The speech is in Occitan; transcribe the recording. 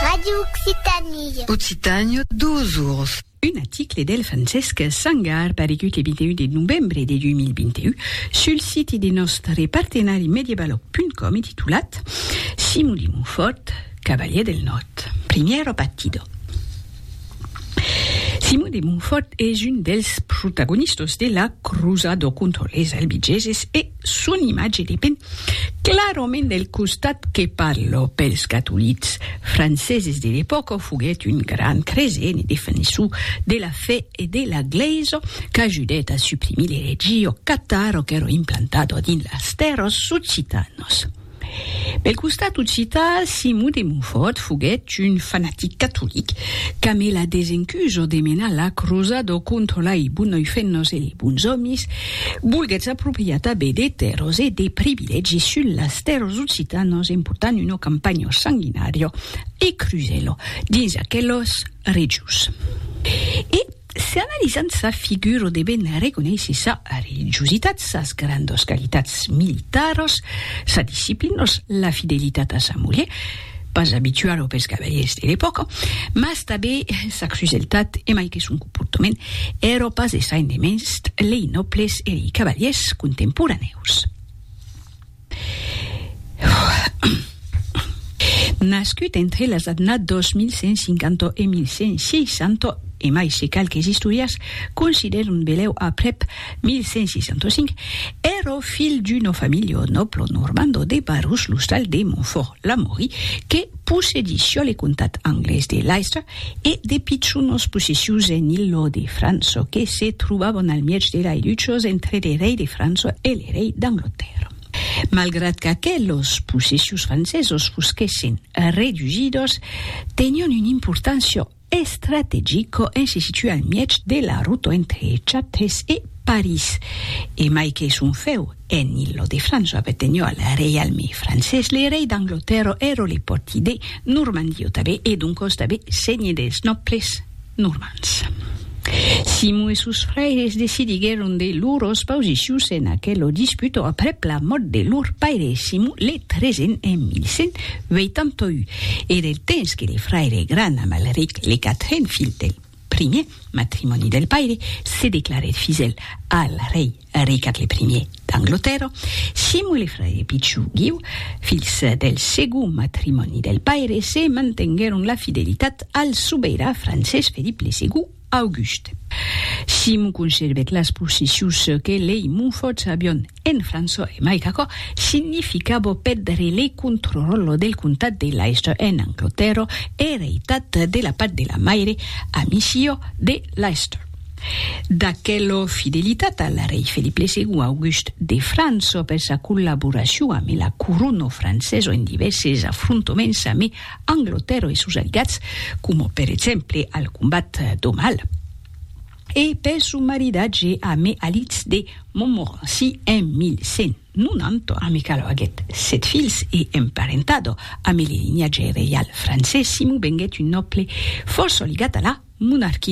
Radio Occitanie. Occitània, dos ors. Un article del Francesc Sangar paregut le 21 de novembre de 2021 sul site de nòstre partenari Mediebaloc.com e titulat Simon de Montfòrt, cavalièr del Nòrd, primièro partido. Simon de Montfòrt es un dels protagonistas de la crosada contra les albigeses e son imatge depen clarament del costat que parla. Pels catolics franceses de l'epòca foguèt un grand creient e defensor de la fe e de la glèisa qu'ajudèt a suprimir l'eretgia catara qu'èra implantada dins las tèrras occitanas. Pel costat occitan, Simon de Montfòrt foguèt un fanatic catolic qu'a me la desencuso de menar la crosado contra lai bonoifennos e lei bons òmis, volguèt s'apropriar tanben de tèrras e de privilègis sus las tèrras occitanas en portant una campanha sanguinària e crusèla dins aquelas regions. E. Se analizam sa figura debem reconéisser sa religiositat, sas grandos qualitats militaros, sa disciplinos, la fidelitat a sa mulher, pas abitualo pels cavaliers de l'epòca, mas tabé sa cruseltat e mai que son comportament ero pas desain de mens lei nòbles e lei cavaliers contemporanèus. Nascut entre las adnats 2150 e 1160, e mai se qualques istorians considèran belèu aprèp 1165, èra ò filh d'una familha nòbla normanda de Barrus-l'Ostal de Montfòrt, Lamory, que, Possedi sul le comtat anglés de Leicester e de pichonos possessius en illo de França que se trobavon al mièg de lai luchos entre le rei de França e le rei d'Anglatèrra. Malgrat qu'aquelos possessius francesos fosquèssen redusidos, tenion una importància Estrategico e se situa al mièg de la ruta entre Châtres e París. E mai que son fèu en Île de France o apertenhó al reialme francés, le rei d'Anglotèrra èra le pòrti de Normandia tanben e doncòs tanben senhe dels nòbles normands. Simon e sos fraires decidiguèron de lors pausicions en aquela disputa aprèp la mòrt de lor paire Simon le Tresen en 1100. 81 e del temps que le fraire gran Amalric, le quatren filh del primier matrimòni del paire, se declarèt fidèl al rei Ricard le primier d'Anglotèrra, Simo e le fraire pichon Guiu, filhs del segond matrimòni del paire, se mantenguèron la fidelitat al sobeirà francés Felip le segond. August. Simon conservèt las possessions que lei Monfòts avion en França e mai qu'aquò significava pèdre le contròròl del comtat de Leicester en Anglatèrra ereitat de la part de la maire a Micio de Leicester. D'aquela fidelitat al rei Felip le Segond August de França per sa collaboracion amé la corona francesa en divèrses afrontaments amé Anglotèro e sos aliats, coma per exemple al combat d'Aumale, e per son maridatge amé Alitz de Montmorency en 1190, amé cal aguèt sèt filhs e emparentado amé le linhatge reial francés, Simon venguèt un nòble fòrça ligat a la monarquia.